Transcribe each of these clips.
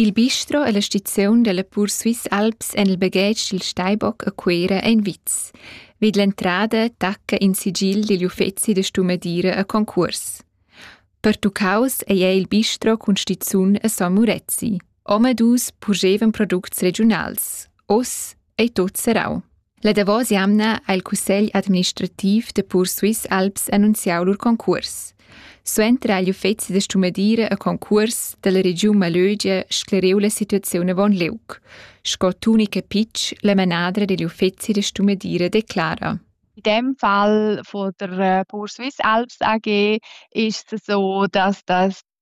Il bistro e la stiziun dalla Pursuisse Alps en il baghetg dil Steibock a Cuera ein vits. Vid l'entrada tacca in sigil digl uffeci da stumadira a concurs. Pertuccaus ei ei il bistro cun stizun a San Murezi. Omadus purgevan products regiunals. Oz ei tot serrau. La davos jamna ha il cussegl administrativ da Pur Swiss Alps annunziau lur concurs. Suenter ha igl uffeci da stumadira e concurs dalla regiun Malögia scleriu la situaziun avon liug. Sco tunica Pitsch, la manadra digl uffeci da stumadira declara. In dem Fall von der äh, Pur Swiss Alps AG ist es so, dass das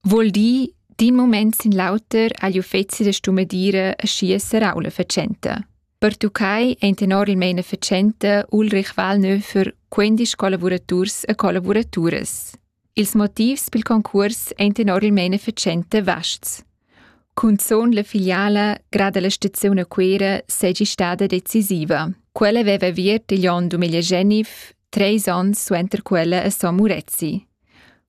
Vuol dir, d'in moment sin l'auter agli uffeci da stumedira schi serau la facenta. Pertuccai ein enormelmein efficiente Ulrich Wallnö für 15 collaboraturs e collaboraturas. Ils motivs pel concurs ein enormelmein efficiente vasts. Cunzon la filiala grada la stazione Quera segi stada decisiva. Quella aveva avviert igl onn 2019, treis onns suenter quella a San Murezzi.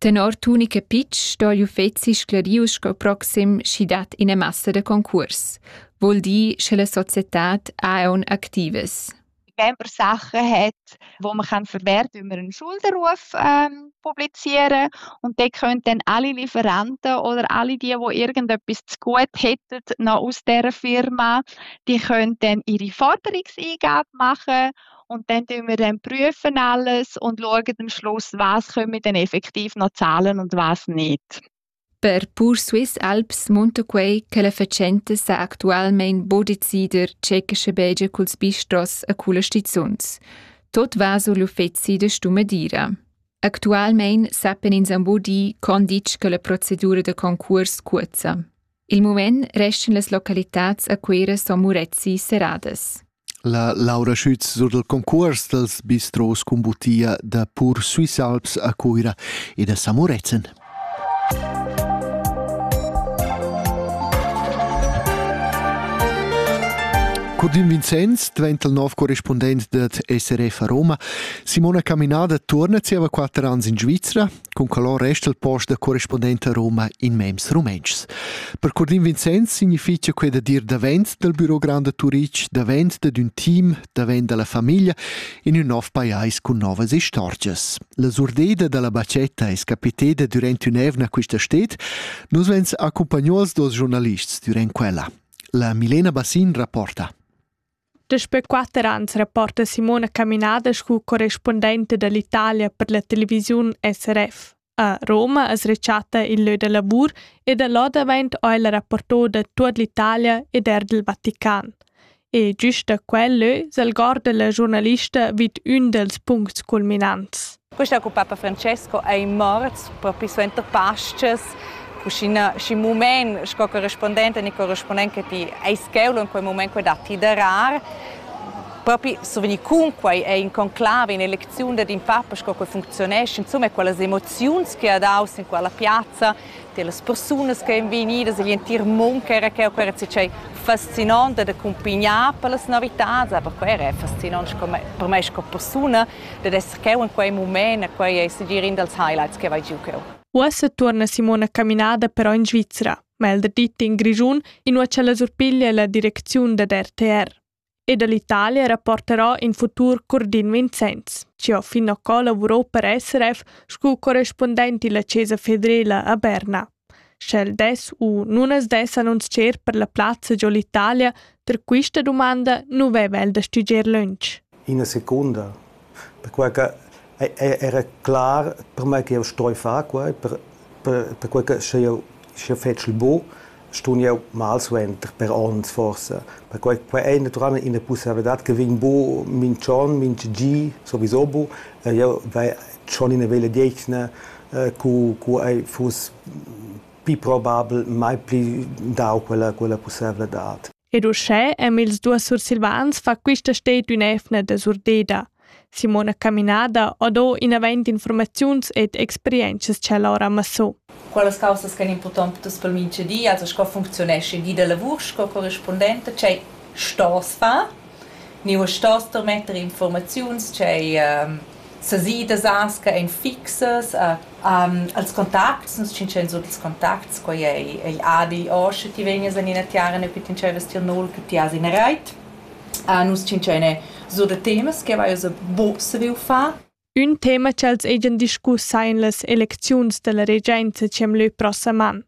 Tenor Toni Capitsch sto igl uffeci sclariu sco proxim sch'i dat ina massa da concurs, vul dir sche la societad ha aun activas. Camper Sachen hat, wo man kann verwerten, wenn man einen Schuldenruf ähm, publizieren und dann können dann alle Lieferanten oder alle die, die irgendetwas zu gut hätten, noch aus dieser Firma, die können dann ihre Forderungseingabe machen Und dann tun wir dann prüfen alles und schauen am Schluss, was kommen dann effektiv noch Zahlen und was nicht. Per pur Swiss Alps munta quei che la fatschenta sa actualmein bodecider tschechische Belge culs bistros a culla stizuns. Tot va sur l'uffeci da Stumadira. Actualmein sappen ins ambo di condic che la procedura da concurs cuozza. Il mument restan las localitads a Cuira sco Murezi serradas. La Laura Schütz sur del concurs dels bistros cun butia da Pur Swiss Alps a Cuira e da Samurezen. Curdin Vincenz diventa il nov corrispondent dad SRF a Roma. Simona Caminada torna zieva quatter anni in Svizzera. Cun calor resta il post da correspondent a Roma in mems rumentschs. Per Curdin Vincenz signifitgia quei da dir davent dal Büro Grande Turic, davent dad un team, davent dalla famiglia, in un nov pajais cun novas istorgias. La surdeda dalla bacetta es capiteda durante un'evna quista stet, nus vens accompagnò als dos giornalists durant quella. La Milena Bassin rapporta. Daspö quatter ans rapporta Simona Caminada scu correspundenta da l'Italia per la televisiun SRF. A Roma as rechatta il lö da lavur e da là davent ho ella rapporto da tuot l'Italia ed eir dal Vatican. E giüst da quel lö s'algorda la giurnalista vid ün dals puncts culminants. Questa cu papa Francesco ei morts propi suenter Pascas. Cuschina schi mument sco correspondente ni correspondent che ti ei scheu in quei mument quei datti da rar. Propi survegni cun quei ei in conclave, un'elecziun dad in papa sco quei funzionesce, insomma quelle emozioni che ha dau sin quella piazza las persunas che èn vegnidas egl entir mund ch'era cheu per tschei fascinant ed accumpignar per las novitads, aber quei era fascinant per mei sco persuna dad esser cheu in quei mument, e quei ei segir in dals highlights che vai giu cheu. Uossa tuorna Simona Caminada però in Svizra, meglder dit in Grischun, inua ch'ella surpiglia la direcziun dad RTR. e dall'Italia rapporterà in futur Curdin Vincenz, chi ho fin occà lavurò per SRF scu correspundent illa Chesa federela a Berna. Sch'el dess u nun as dess annunzcher per la plazza giò l'Italia per quista dumanda nu veva el da stüdger lönch. Ina secunda perquai che era clar per mei ch'jeu stroi far quei, per perquei che sche jeu sche fetschel buc, stun jeu mal suenter per onns forsa. Perquei quei ei naturalmein ina pussaivladad che vegn buc mintg'onn, mintgagi sowieso buc. Jeu vai schon ina veglia detgna cu cu ei fuss pli probabel mai pli dau quella quella pussaivladad. Ed uschè e'm ils duos sursilvans fa quista sted ün'eivna desurdeda. Simona Caminada ho do inavant infuormaziuns ed experientschas cha el ora massò. Quellas caussas ch'han impurtant per tuts pel mincha di, also sco funcziunescha il di da lavur sco corrispundenta, tschè stos far. Niua stos ter metter infuormaziuns, tschè ehm, sesidas as che ein fixas, uh, als contacts, nus tschintschans tut ils contacts, quei ei, ei abi o sche ti vegnas en ina tiara e ti entscheives tier nol che ti has in reit. nus tschintschan so da temas che vai buc saviu far. Ün tema ch'els hajan discuss ein las elecziuns dalla regenza ch'em leu prossam an.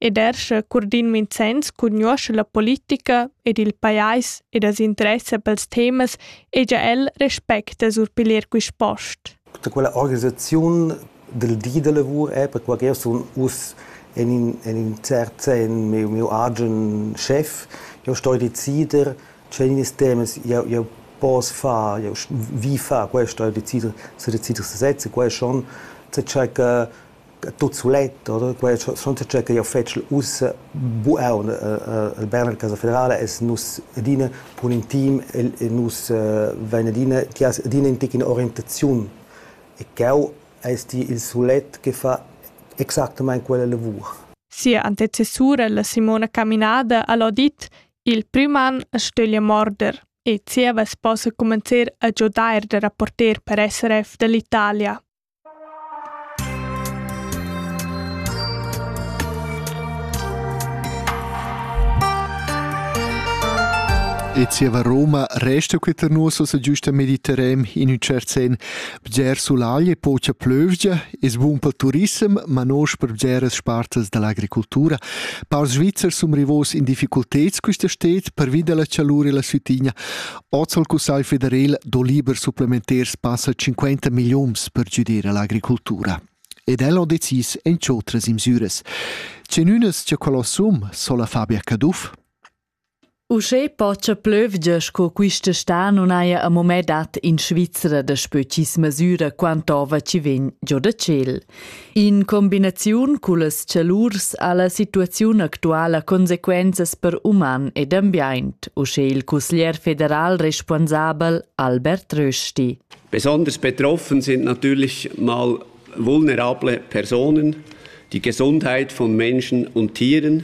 E derscha Curdin Vincenz cugnuoscha la politica ed il pajais ed as interessa pels temas egia el respecta sur piglier quist post. Da quella organisaziun dal di da lavur è perquai ch'eu sun uss en in, en in cert sen miu, miu agen schef, eu sto decider tge nis temas eu, eu poss far, eu vi far, quai sto decider, se decider se sezza, quai schon, ce cha tut sulet oder quai schon tge che io fetschel ussa buon al Berner Casa Federale es nus adina cun in team e nus vain adina chi as adina in tic in orientaziun e cheu es ti il sulet che fa exactamaing quella lavur. Sia antecessura la Simona Caminada al ha dit il prüm an a stöglia morder e zieva as possa cumanzer a giodair da rapporter per SRF da l'Italia. E zieva Roma resta queta nus ossa giusta Mediterran in ün tschert sen. Bger sulagl e pocha plövgia es bun pel turissem, ma nosch per bgeras spartas da l'agricultura. Paurs svizzers sun rivos in difficulteds quista sted pervi da la chalur e la sütigna. Oz ha il Cussegl federal do liber supplementar passa 50 milliuns per giudir l'agricultura. Ed el ha decis en otras imsüras. Genunas che quello sum sola Fabia Caduff? Uschè pocha plövgia sco quista sta non haja a moment dat in Svizzera da spö chi's mesüra quant'ova chi vegn giò da tschel. In combinaziun cullas chalurs ha la situaziun actuala consequenzas per uman ed ambient, uschè il cusglier federal responsabel Albert Rösti. Besonders betroffen sind natürlich mal vulnerable Personen, die Gesundheit von Menschen und Tieren,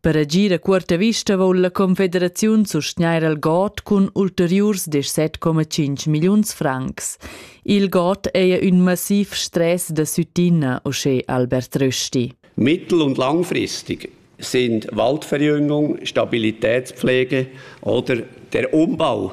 Per agir a cuorta vista voul la Confederaziun sustgnair al God cun ulteriurs 17,5 milliuns francs. Il God è un massiv stress da Süttina, uschè Albert Rösti. Mittel- und langfristig sind Waldverjüngung, Stabilitätspflege oder der Umbau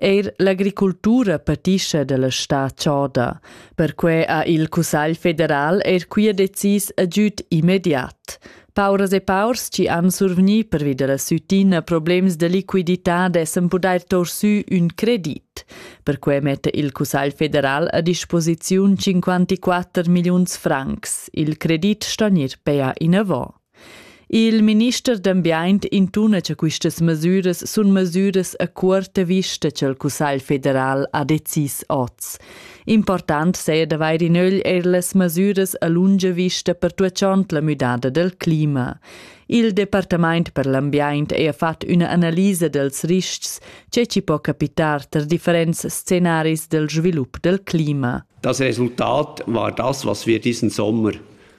Eir l'agricultura patischa dalla stà choda. Perquai ha il Cussagl federal eir quia decis agüd immediat. Pauras e paurs chi han survgni pervi dalla sütina problems da liquidità dessan pudair tour sü ün credit. Perquai metta il Cussagl federal a disposiziun 54 milliuns francs. Il credit sto gnir pea inavant. Il minister d'ambient intuna che questas mesiras sun mesiras a cuorta vista ch'el Cussagl federal ha decis oz. Important saja d'avair in ögl eir las mesiras a lunga vista pertuachond la müdada del clima. Il Departament per l'ambient ha fatg üna analisa dels riscs che ci può capitar ter differents scenaris del svilup del clima. Das Resultat war das, was wir diesen Sommer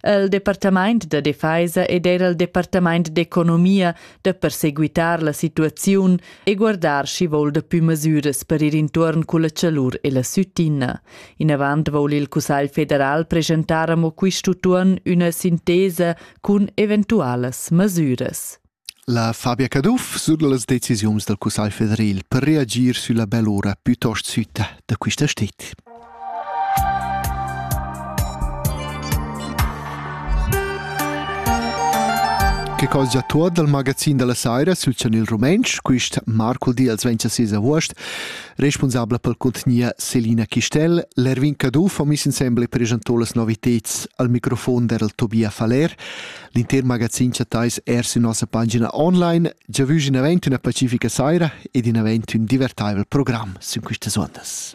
El departamaint da defeisa ed era il departamaint d'economia da perseguitar la situaziun e guardar schi voul dapü masüras per ir intuorn culla chalur e la süttina. Inavant voul il Cussagl federal presentar amo quist'utuon üna sintesa cun eventualas masüras. La Fabia Caduff sut las decisiuns dal Cussagl federal per reagir sülla bell'ura plütost sütta da quista sted. Che cosa tuot dal magazin della saira sul chanel rumentsch, quist marcol di als 26 august, responsabla pel contgnia Selina Chistel, l'Erwin Caduff ho miss insembel e presentò las noviteds al microfon der Tobia Faller, L'inter magazin chattais er sin nossa pagina online. Giavüsch in event üna pacifica saira ed in event ün divertaivel program sün quistas ondas.